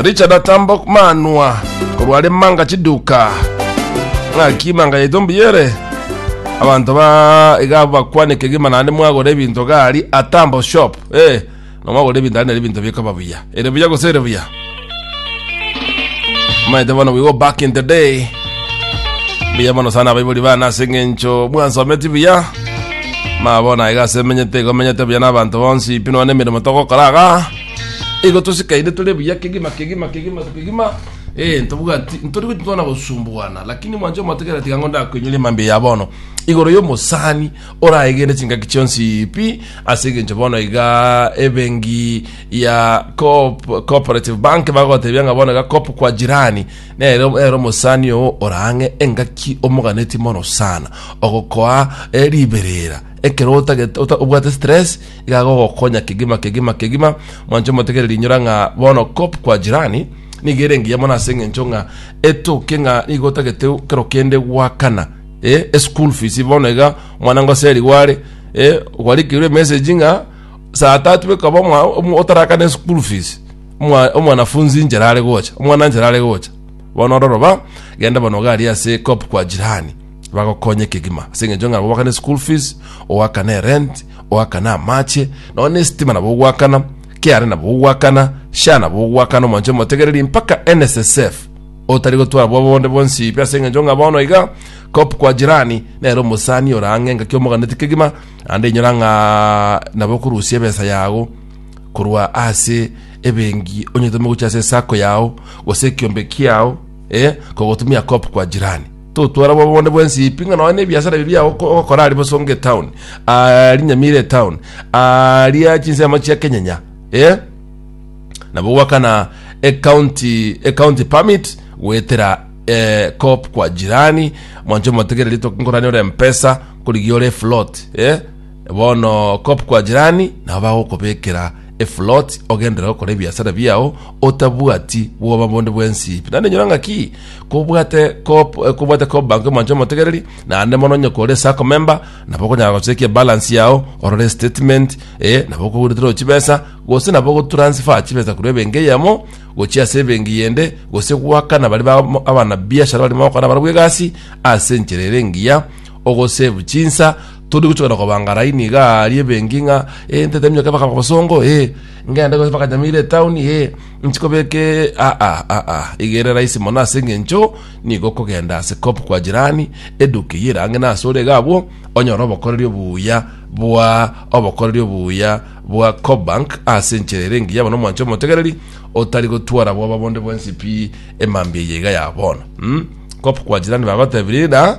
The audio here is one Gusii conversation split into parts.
richard atambok manwa korware manga chiduka ng'aki manga yaito mbuyere abanto ba iga bakwaneka egima naende mwagora ebinto gari atambo shop eh nomwagora ebinto naende ebinto bikaba buya ere buya gose ere buya maete bono we go back in the day buya mono sana abaibori bana ase eng'encho mwansometi buya Ma bono aiga ase emenyete igo menyete buya n'abanto bonsi pi nonya nemeremo togokora iga igo tosikaine tore buya kegima kegima kegima kegima eh ntobwati ntori gochia twana gosumbuana lakini mwanche omotigere tiga ng'o ndakoinyoria mambia ya bono igoro y'omosani oraegene chingaki chionsi pi ase egencho bono iga ebengi ya Coop- cooperative bank bagotebia ng'a bono iga Coop kwa jirani Nere ere omosani oo ore ang'e engaki omoganeti mono sana, ogokoa eh, riberera. Ekero otagete ota- obwate stress, iga agogokonya kegima kegima kegima. Mwanche omotegere rinyora ng'a bono kop kwa jirani nigo ere engiya mono ase eng'encho ng'a etoke ng'a nigo otagete kero kende gwakana eh, eschool fees bono iga omwana ngoseriwa are eh, gwarikirwe emessage ng'a saa tatu ekaba omwa- omo- otarakana eschool fees Omwa- omwanafunzi inchera are gocha omwana nchera are gocha bono ororo ba genda bono gari ase cop kwa jirani bagokonye kegima ase eng'encho ng'a gobakane school fees ogakane erent ogakane amache nonya na esitima nabo ogwakana kra nabo ogwakana sha nabo ogwakana omwanche omotegereri mpaka nssf otari gotwara bwa bonde bonsi ibi ase eng'encho ng'a bono iga cop kwa jirani nere omosani ore ang'e engaki omoganeti kegima naende inyora ng'a nabo okorusia ebesa yago korwa ase ebengi onyetome gochia ase esako yao gose ekiombe kiao eh, kogotumia kop kwa jirani totwara bobe bonde bwensi ipi ng'a nonya nebiasara ebi biao oko- ogokora ari bosonge town ari nyamire town aria chinsemo chia kenyenya eh? nabo gwakana ecounty ecounty permit gwetera eh, cop kwa jirani mwancho motegere rito nkorani ore mpesa korigia ore float eh? Bono kop kwa jirani nabo bagokobekera efuloti ogenderere gokora ebiasara biao otabwati bwoba bonde bwensi pi. Naende nyora ng'aki kobwate kop eh, kobwate kop bank omonche omotegereri naende mono onye kore sacco member nabo okonyara gochekia balance yao orore statement eh, nabo okoguretera chibesa gose nabo ogotransfer chibesa korwa ebenki eyemo gochia ase ebenki yende gose gwakana bari ba abana biashara barimo gokora barabwo egasi ase enchera ere engiya ogosave chinsa Todi gochora kobangaraini niga aria ebengi ng'a ee ntete minyoka mpaka kobosongo ee ngende gose mpaka Nyamira etown ee nchi kobeka ee aa aa aa iga ere rahisi mono ase eng'encho nigo okogenda ase cop kwa jirani eduka eyio ere ang'e na ase ore iga abwo onyore obokoreri obuya bwa obokoreri obuya bwa Cobank ase enchera ere engiya bono omwancho omotegereri otari gotwara bwoba bonde bwensi pi emambia eye iga ya bono mm? cop kwa jirani bagotebirie ng'a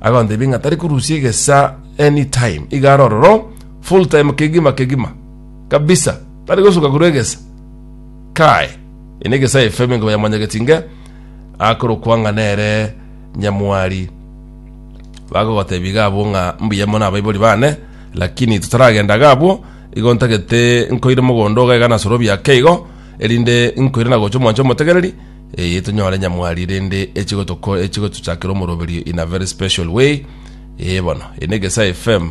agontebia ng'a tari korusia egesaa anytime iga are ororo full time kegima kegima kabisa tari gosuka korwa egesa kae ene egesa efm inga yamwanyagetie inga akorokwa ng'a nere nyamwari bagogotebia iga abwo ng'a mbuya mono abaibori bane lakini totaragenda iga abwo igo ntagete nkoire mogondo oga iga nasoro obiake igo erinde nkoire nagocha omwancha omotegereri Eye tonyore nyamwari rende echigotoko echigotuchakera omoroberio in a very special way. Ee bono, eye ne Gesae FM,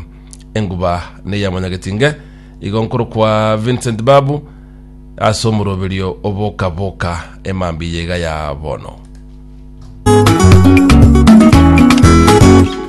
enguba neya Monyagetinge, igo nkorokwa Vincent Babu ase omoroberio oboka boka emambia iga ya bono.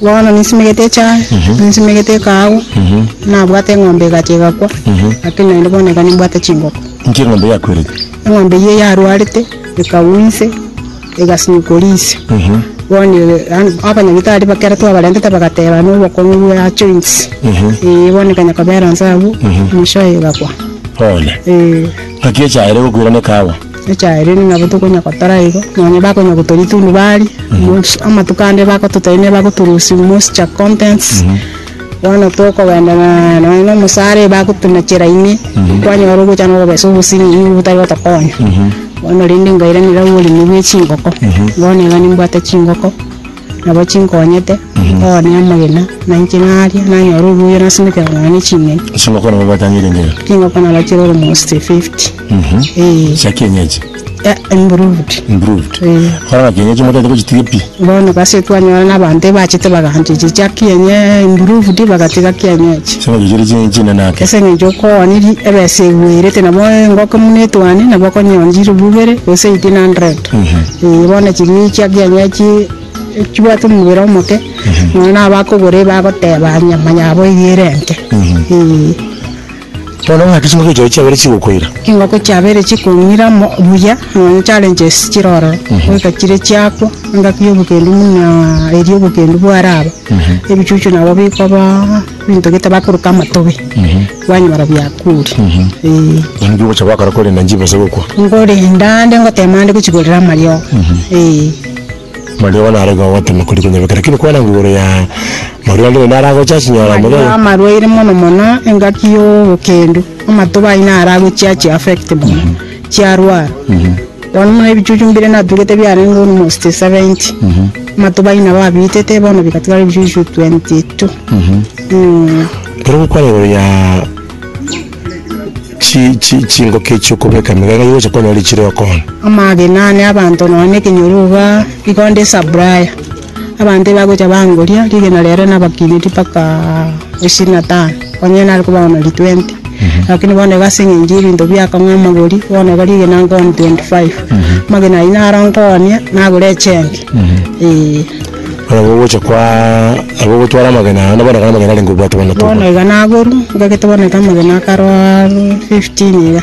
Bono ninsimegete echaye, ninsimegete ekaagu, nabwate eng'ombe egacha egakwa, lakini naende bono iga nimbwate chingoko. Inki eng'ombe yakwerete? Eng'ombe eyio yarwarete, ekagwa inse, egasinyukwa riise. Bono abanyagitari ekero twabarentete bagateba na obokong'u bwa joints, ee, bono ekanya kobera inse abwo, mwishowe egakwa. Bono, Ee. ng'aki echaye ere egokwera na ekaagu? Echairiri nabo tokonya gotora igo, nonya bakonya gotoria etundu bari, mosi- amatuko ande bagototebi ne bagoturusi moisture contents, bono tokogenda na nonya na omosara eba gotuna chera ime, kwanyora ogocha na okobesa obosimi nigo botari gotokonya. Bono rende nkairanera oboremi bwe chingoko, bono iga nimbwate chingoko. Nabo chinkonyete mboe nomogena, na inche ng'aria, nanyore obuya, nasimeke kong'ina ne ching'eni. Chingoko nabo batang'ire engencho. Chingoko nabachire almost 50. Ee. Chia kienyeji. Eh, improved. Improved. Ee. Bono ng'a kienyeji motaete gochitiga pi. Bono gose twanyora na abanto ebachete bagaancheria chia kienye improved bagatiga kienyeji. Ase eng'encho chire chi- chinene ake. Ase eng'encho okooni ri- ebesa egwerete nabo engoko buna etwane nabo okonyora chilifu ibere gose 1800. Ee, bono ching'inchia kiaye echi chibwate omobere omoke, nonya na abakogora iga bagoteba nyama yabo eyio ere enke. Ee. Bono ng'aki chingoko echi chiabere chigokoira? Chingoko chiabere chikong'ira mo- buya, nonya challenges chire ororo, goika chire chiakwa, engaki ya obokendu buna eria obokendu bwaraba, ebichuchu nabo bikoba ebinto gete bakoroka amatobe. Kwanyora biakure, ee. Yaani bigocha gwakora korenda nchibo ase gokwa. Nkorenda nde ngotema nde gochigorera amariogo, ee. Amariogo naro igo ogotema koria konyebeka lakini kwarenge igoro ya marwa ande naende aragocha chinyora Amariogo amariogo. amarwaire mono mono engaki ya obokendu, amatuba aye naro agochia achi affect mono, chiarwara. Bono buna ebichuchu mbire natugete biarenge almost 70, amatuba aye nabo abiitete, bono bigatigara ebichuchu 22. Eeh. Ekero gokwana igoro ya chi chi chingoki echio okobeka emegena nigo ogocha konyora richire okoonia. Amagena ane abanto nonya na ekenyoro igaa, igo nde supplier. Abanto ebagocha bangoria rigena riaye riane nabakineti mpaka ishirini na tano, onye nare kobao na ri twenty. Lakini bono iga ase eng'encho ya ebinto biakong'a amagori, bono iga rigena nkoa ni twenty five. Amagena ayio naro nkoonye nagure echembe, eeh. Barabwo ogocha kwa abwo ogotwara amagena aya bono amagena arenge obwate bono bono iga nagoru, ngagete bono iga amagena akarwaa fifteen iga.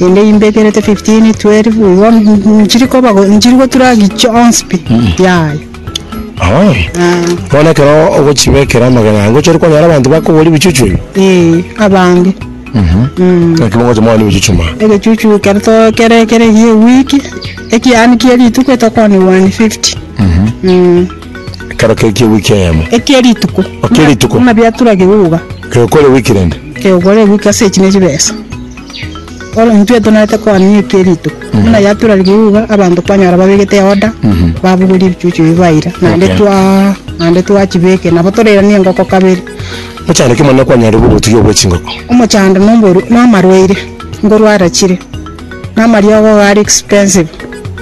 Inde imbe ekerete 15 12 igo mm, nchiri koba go- nchiri gotura gichionsi pi yaya Oh. Ah, Bono ekero ogochibekera amagena ango chori konyara abanto bakogora ebichuchu ebi. eh, abange Mm. Naki bongocha mwana ebichuchu ma. egechuchu kero to- kere kere gie wiki ekiani kie rituko etokoni 150 Mm. Ekero kekie wiki eyemo. Ekie rituko. Okie rituko. Buna biatura geguga. Geokore wiki rende. Geokore wiki ase echi nechibesa. Bono intwe tonerete koania ekie rituko. Buna yatura geguga abanto kwanyora babegete order, babugoria ebichuchu ebi baira. Naende twaa, naende twachibeke. Nabo torairanie engoko kabere. Mochando ki monene kwanyarire bwa obotugi obwe chingoko? Omochando nomboru, nomarwaire, ngorwara chire. na amariogo ao are expensive,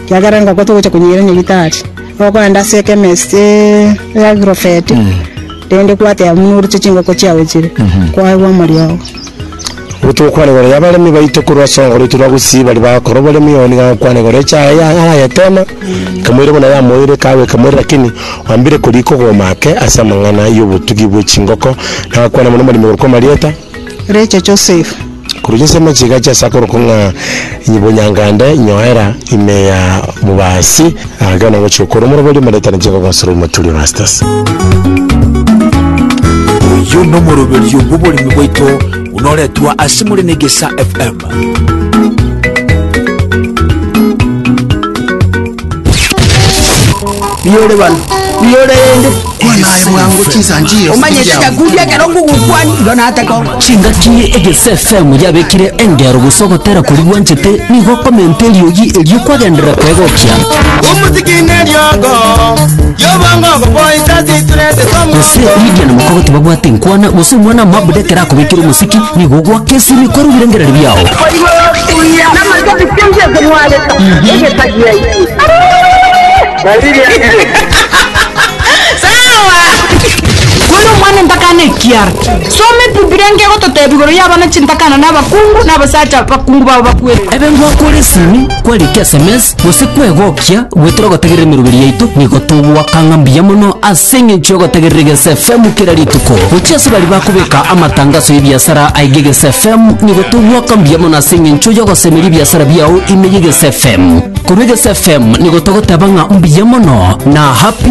ekiagera engoko togocha konyeira nyagetari, okoenda ase echemist ya agrovet, rende kwateba buna oruche chingoko chiago chire, kwaigwa amariogo. Obwo togokwana igoro y'abaremi baito korwa ase orongoro oito rwa Gusii baria bagokora oboremi, oo nigo agokwana igoro y'echa yaye ya arayetema, ekamoira buna yamoire ekaagwa ekamoira lakini oambire korigia okogoma ake ase amang'ana y'obotugi bw'echingoko, nagakwana mono omoremi korokwa amarieta. Richa Joseph. Korwa chinse amachiga chia sakoro kong'a nyibonyangande nyoera ime ya mobasi ake na ngochia okora omorobori omoretane chinko gosura omoturi obastes. Oyo nomoroberio bwoboremi bwaito buna oretwa ase more na egesa FM. Biyore bano. Biyore ende. Kwanaye bwango chisanjio. Omanye shida kudia ekero ngugukwani. Igo natako. chingaki egesefm yabekire engero gusa ogotera kori gwanchete nigo okomenta eriogi erio kwagenderera kwegokia gose lidia na mokogoti babwate nkwana gose omwana mabudekera Akobekire omosiki, nigo ogoaka esimi kware ebirengererio biao. Kware omwana entakana ekiara. Soma Ebibilia enke egototeebia igoro y'abana chintakana na abakungu na abasacha abakungu babo bakwerete. Ebe ngoakore esimi. Kwarikire sms gose kwegokia goetera ogotegerera emeroberi yaito nigo togwaka ng'a mbuya mono ase engencho y'ogotegerera egese FM kera rituko. Gochia ase baria bakobeka amatangaso y'ebiasara aige egese FM nigo togwaka mbuya mono ase engencho y'ogosemeria ebiasara biao ime y'egese FM. Korwa egese FM nigo togoteba ng'a mbuya mono na happy